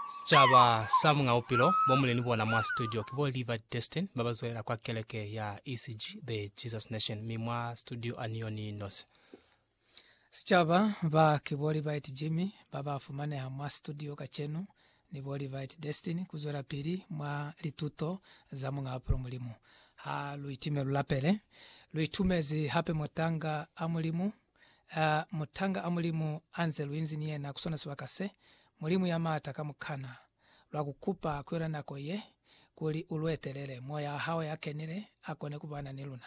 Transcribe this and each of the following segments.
Sicaba sa muñ'a bupilo bo muli ni bona mwa situdio ki bo Liivard Destin ba ba zwelela kwa keleke ya ECG, The Jesus Nation, mi mwa situdio a ni yo ni nosi. Sicaba ba ki bo Liivard Jimmy ba ba fumaneha mwa situdio kacenu ni bo Liivard Destin ku zwelapili mwa lituto za muñ'a bupilo Mulimu. Ha lu itime lu lapele. Lu itumezi hape motanga a Mulimu. A mutanga a Mulimu anze luinzi ni yena ku sona sibaka se, Mulimu ya maata ka mukana, lwa ku kupa ku yona nako ye, kuli u lu etelele, Moya wa hao ya kenile a kone ku bana ni luna,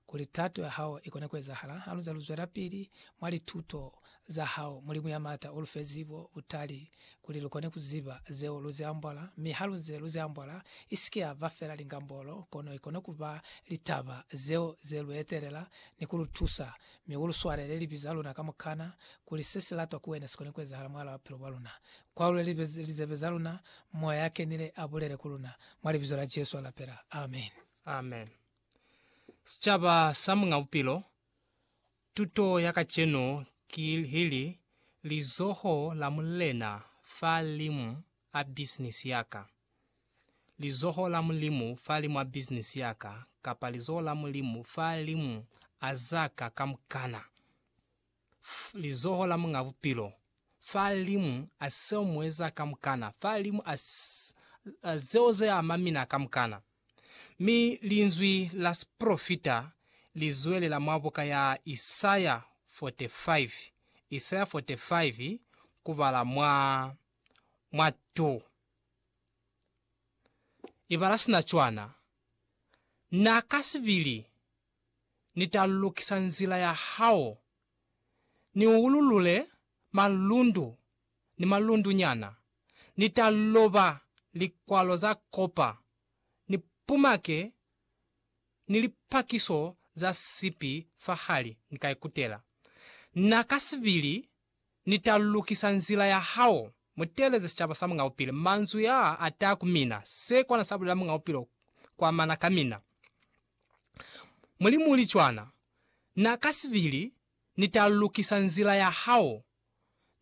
kuli tato ya hao i kone ku ezahala. Haluze lu zwelapili mwa lituto za hao, Mulimu ya maata u lu fe zibo, butali, kuli lu kone ku ziba zeo lu zi ambala, mi ha lu nze lu zi ambala, i si ke ya ba fela lingambolo, kono i kone ku ba litaba zeo ze lu etelela ni ku lu tusa. Mi u lu swalele libi za luna kamukana, kuli se si latwa ku wena si kone ku ezahala mwahal'a bupilo bwa luna. Kwalule lizebe za luna, Moya ya Kenile a bulele ku luna, mwa Libizo la Jesu a lapela. Amen. Amen. Sicaba sa Muñ'a Bupilo Tuto ya kacenu ki ili, Lizoho la Mulena fa limu a bisinisi ya ka. Lizoho la Mulimu fa limu a bisinisi ya ka, kapa lizoho la Mulimu fa limu a za ka kamukana. F Lizoho la Muñ'a Bupilo fa limu a seo mueza kamukana, fa limu a, a zeo ze ama mina kamukana. Mi linzwi la sipolofita li zwelela mwa buka ya Isaya 45, Isaya 45, kubala mwa mwa 2. Ibala sina cwana, Na ka sibili Ni ta lukisa nzila ya hao, Ni ululule malundu ni malundunyana. Ni ta loba likwalo za kopa, ni pumake ni lipakiso za sipi fahali, ni ka ikutela. Na ka sibili, Ni ta lukisa nzila ya hao, mu teeleze sicaba sa Muñ'a Bupilo. Manzwi a a ta ku mina, se kona sa bulela Muñ'a Bupilo kwa mana ka mina. Mulimu uli cwana. Na ka sibili, Ni ta lukisa nzila ya hao,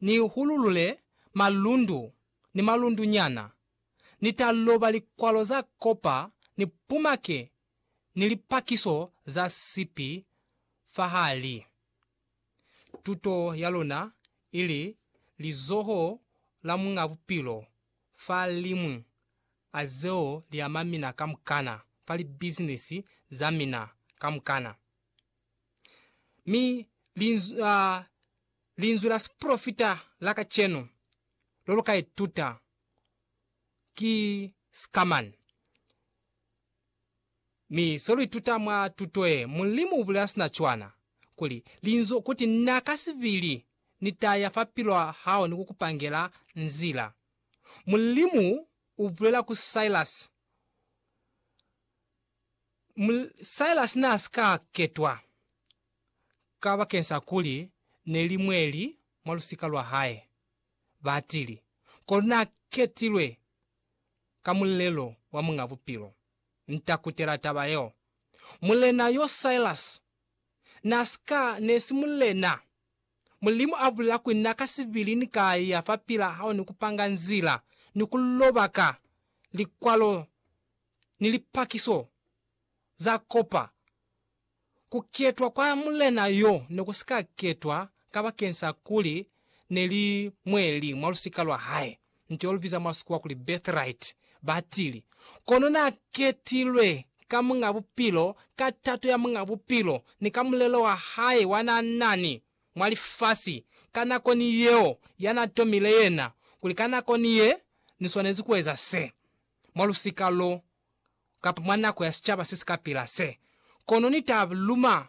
ni hululule malundu ni malundu nyana, ni ta loba likwalo za kopa ni pumake ni lipakiso za sipi fahali. Tuto ya luna ili lizoho la Muñ'a Bupilo fa limwi a zeo li ama mina kamukana fa libizinisi za mina kamukana. Mi linzwi, a, linzwi la siprofita la kacenu lo lu ka ituta ki Scaman. Mi so lu ituta mwa tuto ye, Mulimu u bulela sina cwana, kuli, linzwi, kuti, Na ka sibili ni ta ya fa pilwa hao ni ku ku pangela nzila. Mulimu u bulela ku Silas, Silas n'a si ka ketwa kabakeng sa kuli ne li mweli mwa lusika lwa hae, batili, kono n'a ketilwe ka mulelo wa Muñ'a Bupilo. Nta kutela taba yeo. Mulena yo Silas n'a si ka ne si mulena. Mulimu a bulela kuli n'a ka sibili ni ka ya fa pila hao ni ku panga nzila ni ku loba ka likwalo ni lipakiso za kopa, ku ketwa kwa mulena yo ne ku si ka ketwa kabakeng sa kuli ne li mwe li mwa lusika lwa hae, nto yo lu biza mwa Sikuwa kuli birthright, ba tili. Kono n'a ketilwe ka Muñ'a Bupilo, ka tato ya Muñ'a Bupilo, ni ka mulelo wa hae wa n'a na ni mwa lifasi ka nako ni yeo ya n'a tomile yena, kuli ka nako ni ye ni swanezi ku eza se. mwa lusika lo, kapa mwa nako ya sicaba se si ka pila se, kono Ni ta luma